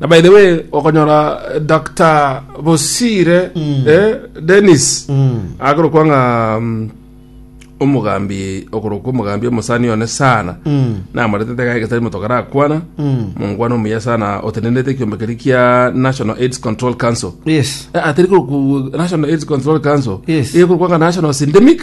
Na by the way okonyora Dr. Bosire eh, Dennis akorokwa ng'a mm, omogambi okorokwa omogambi omosani one sana namoretete gae getari motoka rakwana mongwana omuya sana otenenete ekiombe keri kia National AIDS Control Council yes Eh, atari korokwa National AIDS Control Council Yes. eye korokwa ng'a National Syndemic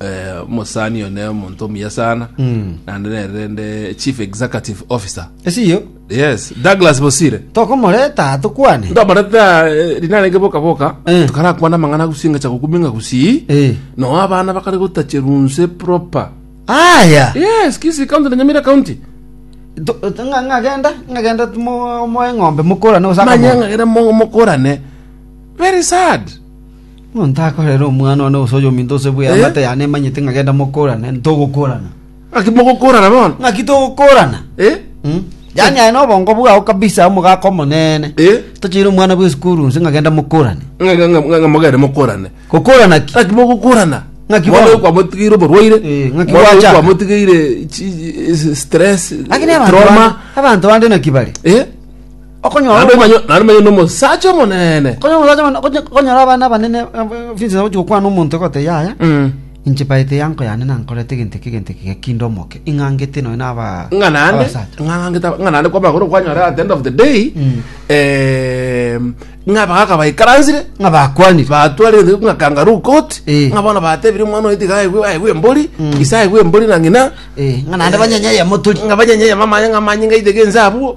eh, omosani oyo ne omonto omuya sana naende nere rende chief executive officer esiyo yes douglas bosire tokomoreta tukwane ndomareta rina rege boka boka Eh. tukarakwana amang'ana gusinga cha gukuminga gusii Eh. no abana bakare gotachirunse proper aya yes kisi county na nyamira county To- to- nga- ngagenda ngagenda tumo- moe ng'ombe mokorane osaka manya ng'agere mo- mokorane very sad Monto akorere omwana one gose oyominto gose bw'e Eh? amate yane emanyete ng'a genda mokorane, ntogokorana. Ng'aki mogokorana bono? Ng'aki togokorana? Eh? Mm. Yaani aye nobongo bwao kabisa omogaka omonene. Eh? Tocheire omwana bw'esukuru nse ng'a genda mokorane. Ng'a- ng'a- ng'a- ng'a mogende mokorane Gokorana ki? ng'aki mogokorana Ng'aki mwana bono? oyo kwamotigeire oborwaire Eh, ng'aki mwana oyo gwachaka? kwamotigeire chi- eh, stress Lakini abantu trauma bande- abantu bande naki bare? eh Okonyora Naende omo- manye- naende manye nomosacha omonene. okonyora omosacha mone- okonye- okonyora abana abanene finse nagochi gokwana omonto egote yaya Mm. inche baete yanko yane nankorete egento eke egento eke gekinde omoke ing'angete nonya na aba ng'a naende abasacha. ng'a naende kwa- ng'a naende kwamagoro kwanyora at the end of the day Mm. em, ng'a abagaka baikaransire ng'a bakwanire batware ri- ng'a kangaroo court Eh. ng'a bono batebire omwana oyo tiga aigwe aigwe embori Mm. ise aigwe embori na ng'ina Eh, ng'a naende banyenye yamotori ng'a banyenye mama aye ng'a manye ng'a aitege ense abwo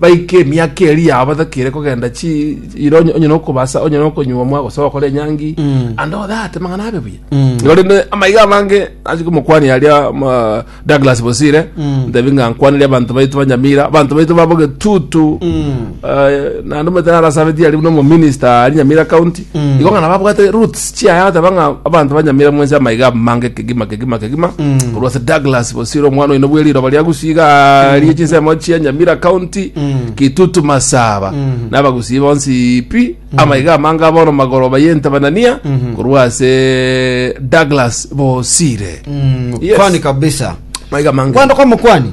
baike emiaka eri yao batakire kogenda chi iro onye- onye nokobasa onye nokonyuomwa gose gokora enyangi ande odate mang'ana abe buya igo rende amaiga amange ase omokwani aria ma- Douglas Bosire ntebi ng'a nkwanire abanto baito ba Nyamira abanto baito babo getutu eh, naende omanyete narasabetie aria buna omominista aria Nyamira county Mm. igo ng'a nababwate roots chiaye agateba ng'a abanto banyamire mwensi amaiga amange kegima kegima kegima Mm. korwa ase douglas bosire omwana oino bwe riroba ria gusii iga rie chinsemo chia nyamira county Mm. kitutu masaba Mm. nabagusii bonsi pi amaiga amange abono magoroba yentebanania Mhm. korwa ase douglas bosire Mm, Yes. kwani kabisa maiga amange kwando kwa mokwani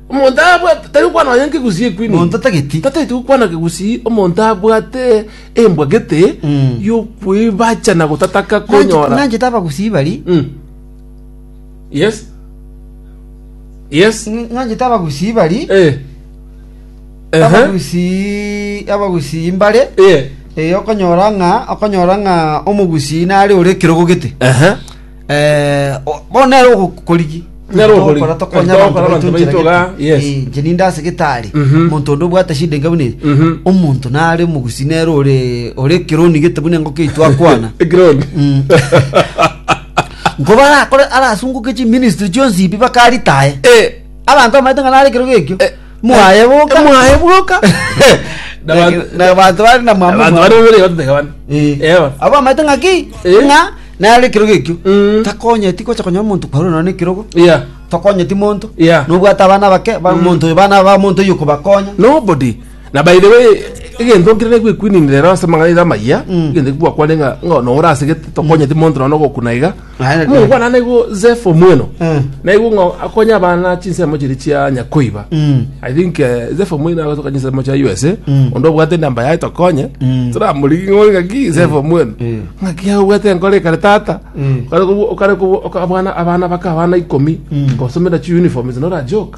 Omonto abwate tari gokwana nonya nkegusii ekwini. Monto tageti. Tateti gokwana kegusii omonto abwate embwa gete Mm. y'okwebacha na gotataka Nanche- konyora. Nanche tabagusii bari. Mm. Yes. Yes. Nanche tabagusii bari. Eh. Ehe. Abagusii abagusii mbare. Eh. Eh, okonyora ng'a okonyora ng'a omogusii nare ore ekerogo gete. Ehe. Eh, o- bono nere ogokorigi Nere ogokorigi. Tokora tokonya Tokora abanto abanto baito baito iga, nchera yes. gete. Eh, nche ninde ase gitari Mhm. omonto onde obwate shida enga buna eye. Mhm. omonto nare omogusi nere ore ore ekironi gete buna engoko yaito akwana Ekironi. Mm. nkoba arakore arasunguke chiministry chionsi ibi bakaritae Eh, abanto bamaete ng'a nare ekero gekio Eh. Mwaye boka. mwaye boka Na Na- bantu- na bantu bari na mwamwa abantu mwamwa. bari babere batoteka bane Eh. Ewa. abo amaete ng'aki Eh. ng'a nare ekirogo ekio Mm. takonyeti gocha konya omonto kwarwa none ekirogo Yeah. tokonyeti monto Yeah. nobwate abana bake ba- monto bana ba monto oyo kobakonya nobody na by the way egento nkirere gwekuinini rero ase magaiga amaya Mm. egento ekigwakwane ng'a ng'a nora asegete tokonyeti monto nono gokuna iga Aye kare. Mokwana naigo Zeph Omweno. Eh. Naigo ng'a akonye abana chinsemo chiri chia Nyakoiba. Mm. I think eh, Zeph Omweno agosoka chinsemo chia USA. Mm. Onde obwate namba yaye tokonye. Mm. Toramorigi ng'ori ng'aki Zeph Omweno. Mm. Ng'aki aye obwate nkore ekare tata. Mm. Okare kobu- okare kobu- oka- abana abana baka abana ikomi. Mm. Kosomera chi uniforms nora joke.